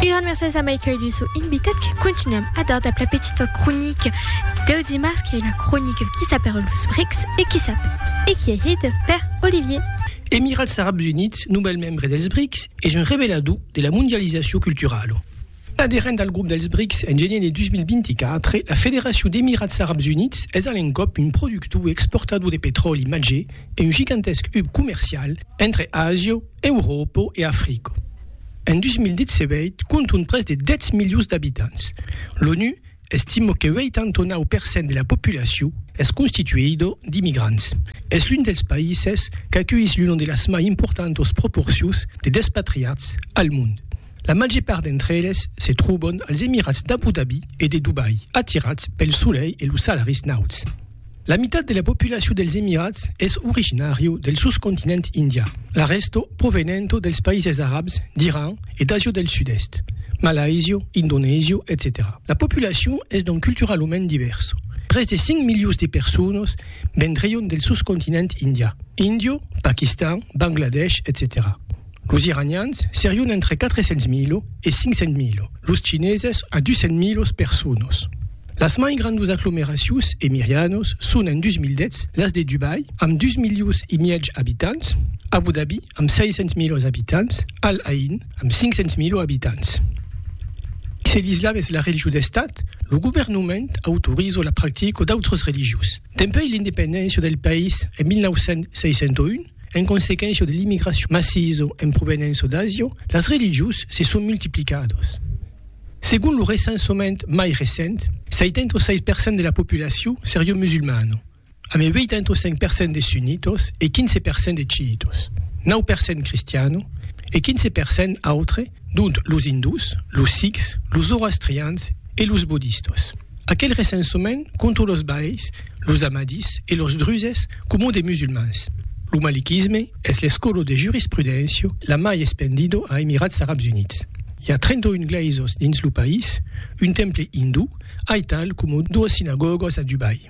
Un grand merci a Michael Dussault invitat que continuam a dar dab la petita cronica deu dimars qu'ei la cronica Qui sap per los rics e qui sap? e qui ei hita per Olivier. Emirats Arabs Units, novèl membre dels BRICS, es un revelador de la mondializacion culturala. Aderent al grop dels BRICS en genier de 2024, la Federacion d'Emirats Arabs Units es a l'encòp un productor e exportador de petròli màger e un gigantesc hub comercial entre Asia, Euròpa e Africa. En 2017, compton pres de 10 milions d'abitants. L'ONU estima que 89 per cent de la populacion es constituida d'immigrants. Es l'un dels païses qu'aculhís l'una de las mai importantas proporcions de despatriats al mond. La màger part d'entre eles se tròban als Emirats d'Abu Dhabi e de Dubai, atirats pel solelh e los salaris nauts. La mitat de la populacion dels Emirats es originària del soscontinent indià, la rèsta provenenta dels païses arabs, d'Iran e d'Asia del Sud-Èst, Malaisia, Indonesia, etcetèra La populacion es donc culturalament divèrsa. Pres de 5 milions de personas vendrián del soscontinent indià, Índia, Paquistan, Bangladesh, etcetèra Los iranians serion entre 400.000 e 500.000, los chineses a 200.000 personas. Las mai grandas aglomeracions emirianas son en 2010 las de Dubai, amb 2 milions e mièg abitants, Abu Dhabi, amb 600.000 abitants, Al Ain, amb 500.000 abitants. Se l'islam es la religion d'estat, lo governament autoriza la practica d'autras religions. Dempuèi l'independéncia del país en 1961, En consequéncia de l'immigracion massisa en provenença d'Asia, las religions se son multiplicadas. Segon lo recensament mai recent, 76 per cent de la populacion seriá musulmana, amb 85 per cent de sunnitas e 15 per cent de chiitas, 9 per cent cristiana e 15 per cent autre, dont los indús, los sikhs, los zoroastrians e los bodistas. Aquel recensament compta los baeis, los ahmadis e los druses coma de musulmans. Lo malikisme es l'escòla de jurisprudéncia la mai espendida a Emirats Arabs Units. I a 31 glèisas dins lo país, un temple indú, aital coma doas sinagògas a Dubai.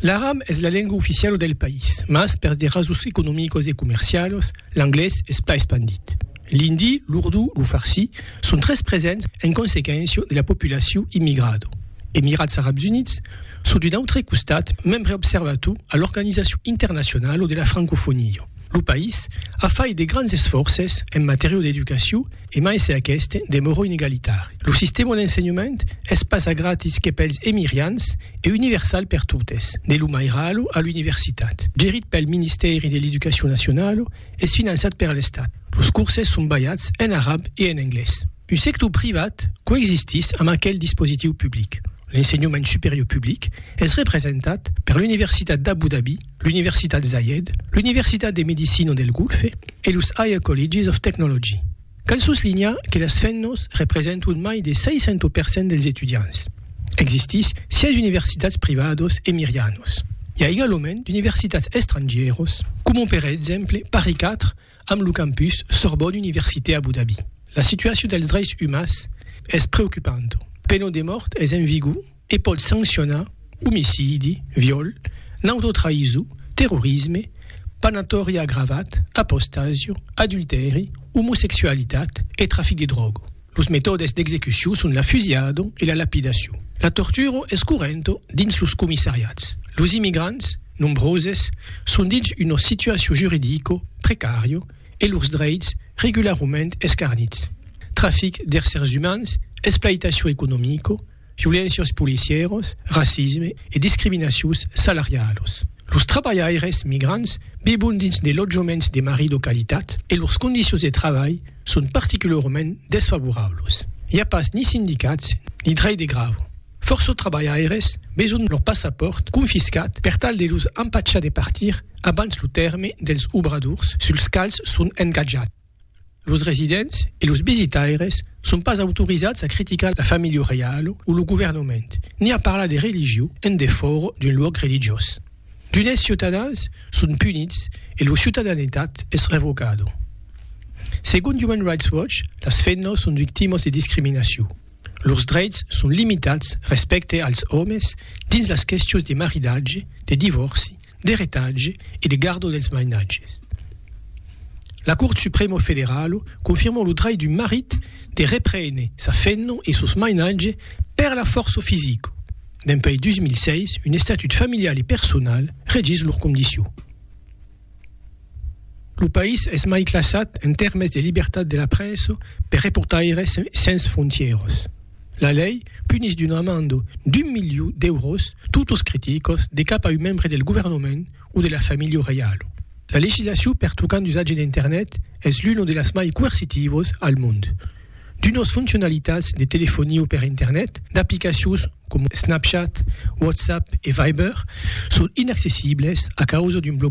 L'aran es la lenga oficiala del país, mas per de rasons economicas e comercialas, l'anglés es pas espandit. L'indi, l'urdú, lo farsi son tres presents en consequéncia de la populacion immigrada. Emirats Arabs Units son d'un autre costat membre observator a l'Organizacion Internacionala de la Francofonia. Lo país a fait de grands esfòrces en matèria d'educacion e mai se aqueste demòro inegalitari. Lo sistèma d'ensenhament es pas a gratis que pels emirians e universal per totes, de lo mairalo a l'universitat. Gerit pel Ministèri de l'Educacion Nacionala, es finançat per l'Estat. Los curses son balhats en arab e en anglés. Un sector privat coexistís amb aquel dispositiu public. L'ensenhament superior public es representat per l'Universitat d'Abu Dhabi, l'Universitat Zayed, l'Universitat de Medicina del Golfe e los Higher Colleges of Technology. Cal soslinhar que las femnos representon mai de 60 per cent dels etudiants. Existís 6 universitats privados e mirianos. I a egalament d'universitats estrangieros, coma per exemple Paris 4 amb lo campus Sorbonne Université Abu Dhabi. La situacion dels dreis umans es preocupanta. Pena de mòrt es en vigor e pòt sancionar omicidi, viòl, nautotraïso, terrorisme, panatòri agravat, apostasia, adultèri, omosexualitat e trafic de dròga. Los metòdes d'execucion son la fusilhada e la lapidacion. La tortura es correnta dins los comissariats. Los immigrants, nombroses, son dins una situacion juridica precària e lors dreits regularament escarnits. Trafic d'éssers umans, esplaitacion economica, violéncias policièras, racisme e discriminacions salarialas. Los trabalhaires migrants vivon dins de lotjaments de marrido qualitat e lors condicions de trabalh son particularament desfavorablas. I a pas ni sindicats ni drech de grèva. Fòrça trabalhaires veson lor passapòrt confiscat per tal de los empachar de partir abans lo tèrme dels obradors suls quals son engatjats. Los residents e los visitaires son pas autorizats a criticar la familha reiala o lo governament, ni a parlar de religion en defòra d'un luòc religiós. D'unes ciutadans son punits e lor ciutadanetat es revocada. Segon Human Rights Watch, las femnas son victimas de discriminacion. Lors dreits son limitats respècte als òmes dins las questions de maridatge, de divòrci, d'eretatge e de gardo dels mainatges. La Cort Supremo Federalo confirmò lo drech d'un marit de reprene sa femna e sos mainatge per la fòrça fisica. Dempuèi 2006, un estatut familial e personal regís lor condicion. Lo país es mai classat en tèrmes de libertat de la premsa per Reportaires sens frontièras. La lei punís d'una amanda d'un miliu d'èuros totus criticos de cap a un membre del governament o de la familha reiala. La legislacion pertocant l'usatge d'Internet es l'una de las mai coercitivas al mond. D'unas foncionalitats de telefonia per Internet, d'aplicacions coma Snapchat, WhatsApp e Viber son inaccessibles a causa d'un blocatge